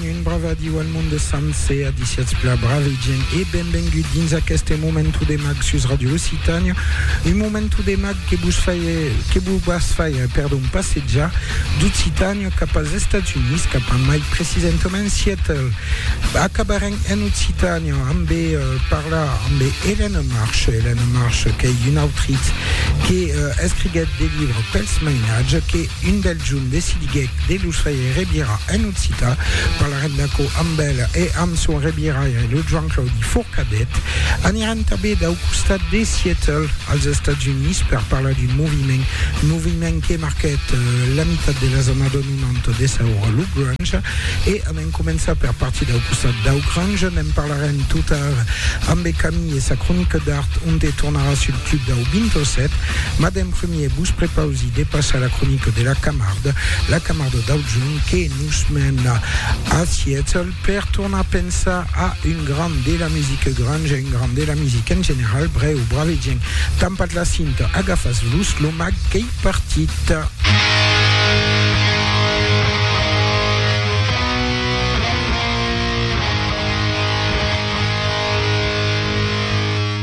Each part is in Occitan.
Un brava adiu al mond de Sanse, adiciatz pla brave gent e benvengut dins aqueste momentu de mag sus Radio Occitània, un momentu de mag que vos faie, que vos vas faie, perdon, passejar d'Occitània cap als Estats Units, cap a mai precisentament Seattle. Acabarem en Occitània amb eh, parlar amb Hélène Marche, Hélène Marche qu'ei un autritz que eh, escriguèt de livres pels mainatges, que Un bèl jorn decidiguèc de los faire revirar en occitan. Parlarem d'aquò amb el e amb son reviraire, lo Joan Claudi Forcadet. Anirem tanben dau costat de Seattle, als Estats Units, per parlar d'un moviment, un moviment que marquèt la mitat de las annadas 90 de sa ora, lo grunge. E an en començar per partir dau costat dau grunge. Ne'n parlarem totard ambe Camille e sa cronica d'art, onte tornarà sul club dau 27. Mas d'en prumèr, E vos prepausi de passar la cronica de la Camarda, la Camarda d'Aujon que nos mena a Seattle per tornar pensar a un grand de la musica grunge, un grand de la musica en general, brèu, bravedjent, tampat la cinta, agafas los lo mag qu'ei partit.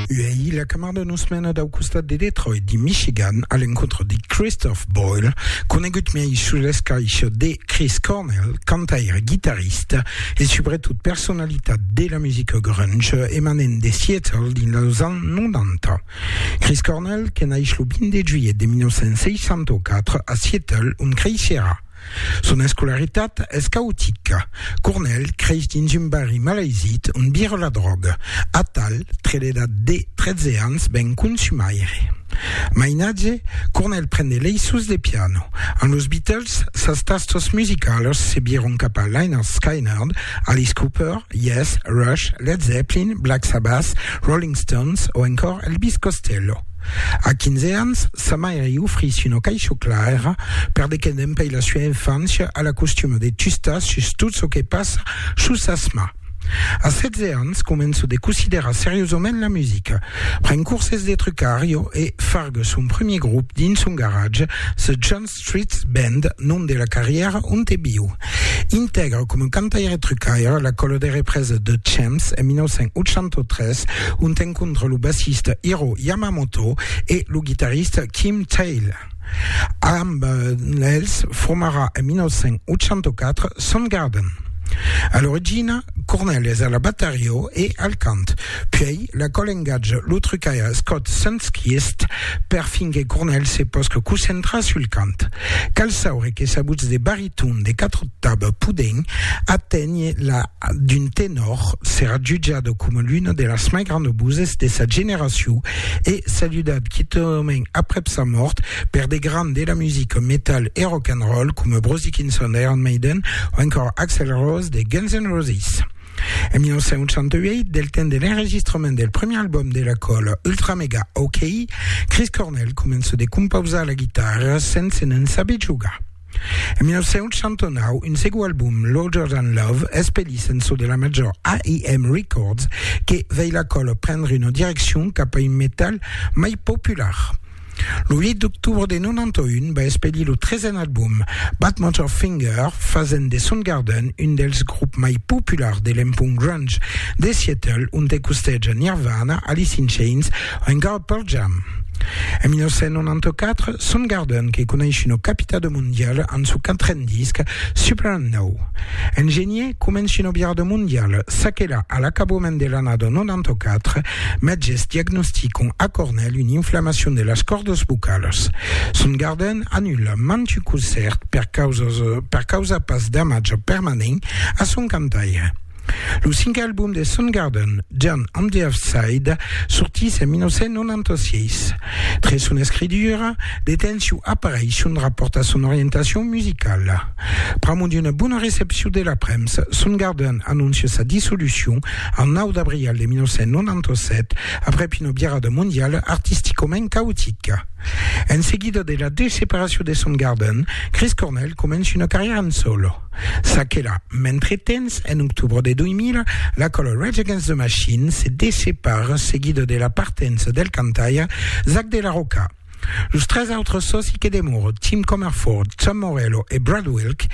Uèi la Camarda nos Nos menat au costat de Detroit, dins Michigan, a l'encontre de Christoph Boyle, conegut miei sus l'escaisha de Chris Cornell, cantaire, guitarrista e subretot personalitat de la musica grunge emanent de Seattle dins los ans 90. Chris Cornell que naish lo 20 de juilhet de 1964 a Seattle ont creisherà, Son escolaritat es caotica. Cornel creix dins un barri malaisit ont vira la dròga, atal tre l'edat de 13 ans ven consumaire. Mainatge, Cornel pren de leissos de piano. Amb los Beatles, sas tastos musicalas se viron cap a Lynyrd Skynyrd, Alice Cooper, Yes, Rush, Led Zeppelin, Black Sabbath, Rolling Stones o encòr Elvis Costello. A 15 ans, sa maire i ofrís una caisho clara per de que n'empei la sua infància a la costuma de tustar sus tot çò que passa sus sas mans. A 16 ans, començo de considerar seriosament la musica, pren curses de trucario e farga son premier grup dins son garatge The John Street Band, nom de la carrièra onte viu. Intègra coma cantaire-trucaire la còla de represa The Champs en 1983, ont encontra lo bassista Hiro Yamamoto e lo guitarrista Kim Thayil. Amb els formarà en 1984 Soundgarden. A l'origina, Cornell es a la batarió e al cant. Puèi, la còl engatja lo trucaire Scott Sundquist per fin que Cornell se pòsca concentrar sul cant. Cal saure que s'aguts de bariton de quatre octaves poden aténher la d'un tenòr, serà jutjada coma l'una de las mai grandas voses de sa generacion e saludat quitament aprèp sa mòrt per de grands de la musica metal e rock and roll coma Bruce Dickinson d'Iron Maiden o encòra Axl Rose de Guns N' Roses. En 1968, del temps de l'enregistrament del premier album de la còla Ultra Mega OK, Chris Cornell comença de compausar la guitarra sense n'en saber jogar. En 1969, un segon album, Larger Than Love, es pelís en so de la major AIM Records que vei la còla prendre una direccion cap a un metal mai popular. Lo 8 d'octobre de 91 va expedir lo tresen album, Badmotor Finger, fasent de Soundgarden un dels grops mai populars de l'empont grunge de Seattle, onte costeja Nirvana, Alice in Chains o encara Pearl Jam. En 1994, Soundgarden que coneis una capitado mondiala amb su quatren disc, Super and Now. En genier, comenci una virada mondiala, çaquelà a l'acabament de l'annada 94, Mètges diagnosticon a Cornèl una inflamacion de las còrdas vocalas. Son gardèn anula mantu concèrt per causas per causar pas d'amatge permanent a son cantaire. Lo cinque album de Soundgarden, John on the Earthside, sortís en 1996. Tre son escritura, de tensiu apareisson rapòrtas son orientacion musicala. Pr'amor d'una bona recepcion de la premsa, son gardant anoncia sa dissolucion en 9 d'abrial de 1997 aprèp una virada mondiala artisticament caotica. En seguida de la deseparacion de son gardant, Chris Cornell comença una carrièra en sòlo. Ça que la, mentretemps, en octubre de 2000, la còla Rage Against the Machine se dessepara seguida de la partença del cantaire Zack de la Rocha. Los tres autres sòci que demòran, Tim Comerford, Tom Morello e Brad Wilk,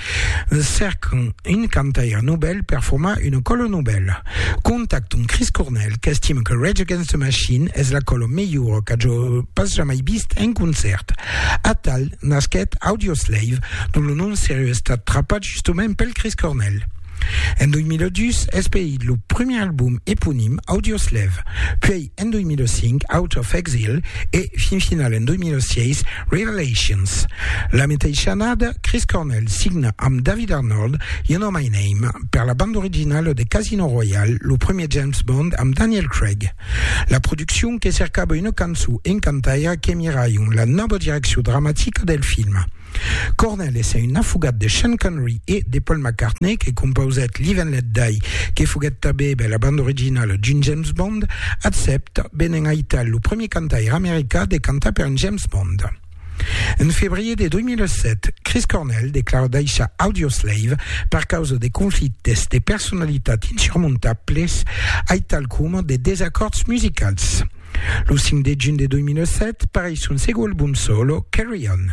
cercan un cantaire novèl per formar una còla novèla. Contactan Chris Cornell, qu'estima que Rage Against the Machine es la còla melhora qu'aja pas jamai vist en concèrt. Atal nasquèt Audioslave, dont lo nom serieu estat trapat justament pel Chris Cornell. En 2002 es paït lo primièr album eponim Audioslave, puèi en 2005 Out of Exile e, fin final en 2006, Revelations. La meteissa annada, Chris Cornell signa amb David Arnold You Know My Name per la banda originala de Casino Royale, lo primièr James Bond amb Daniel Craig. La produccion que cercava una cançon encantaira que miraion la nòva direccion dramatica del film. Cornell essent un afogat de Sean Connery e de Paul McCartney que compausèt Live and Let Die que foguèt tabebe la banda originala d'un James Bond, accèpta, benent aital lo premier cantaire americà de cantar per un James Bond. En febrier de 2007, Chris Cornell declara daishar Audioslave per causa de conflictes de personalitat insurmontables aital coma de desacòrds musicals. Lo 5 de junh de 2007 pareis son segond album solo, Carry On.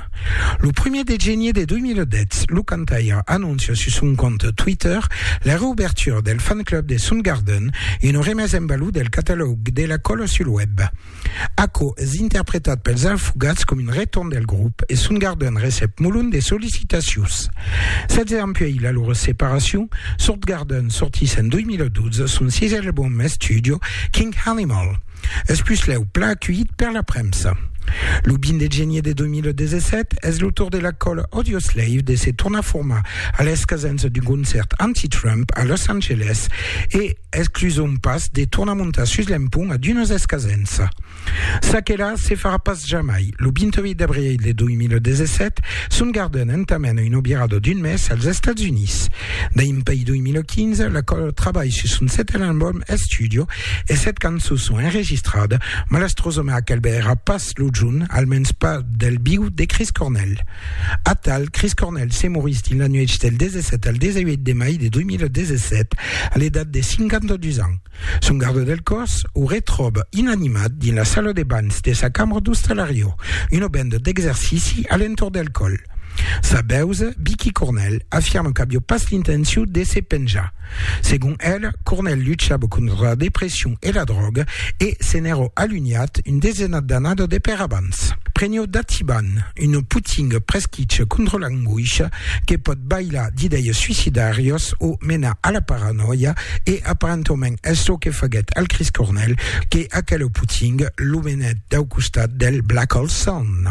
Lo primier de genier de 2010, lo cantaire anóncia sus son compte Twitter la reoubertura del fan club de Soundgarden, una remesa en valor del catalòg de la còla sul web. Aquò es interpretat pels alfogats com un retorn del grop e son garden recep molon de sollicitacions. Sètz ans puèi la lor separacion, Sourtgarden sortís en 2012 son sisè album d'estudio, King Animal. Es puslèu plan aculhit per la premsa. Lo 20 de genier de 2017, es lo tor de la còla Audioslave de se tornar formar a l'escasença d'un concèrt anti-Trump a Los Angeles e Exclusons pas de tornar montar sus l'empont a d'unes escasents. Ça que la se farà pas jamai. Lo 28 d'abril de 2017, Soundgarden entamèna una virada d'un mes als Estats Units. Dempèi 2015, la còla trabalh sus son setèn album estudio e sèt cançons son enregistradas, malastrosament aquel bèira pas pas lo junh, almens pas del viu, de Chris Cornell. Atal, Chris Cornell se morís dins la nuèch del 17 al 18 de mai de 2017, a l'edat de 52 ans. Son garda del còs o retròba inanimat dins la sala de banhs de sa cambra d'ostalariò, una benda d'exercici a l'entorn del còl. Sa bèusa, Vicky Cornell, afirma qu'aviá pas l'intencion de se penjar. Segon el, Cornel luchava contra la depression e la dròga e se n'èra alunhat un desenat d'annadas de per abans. Prenheu d'Atiban, una potinga presquicha contra l'angoisha que pòt balhar d'idèias suicidàrias o menar a la paranòia e aparentament es çò que faguèt al Chris Cornel que aquela potinga lo menèt dau costat del Black Hole Sun.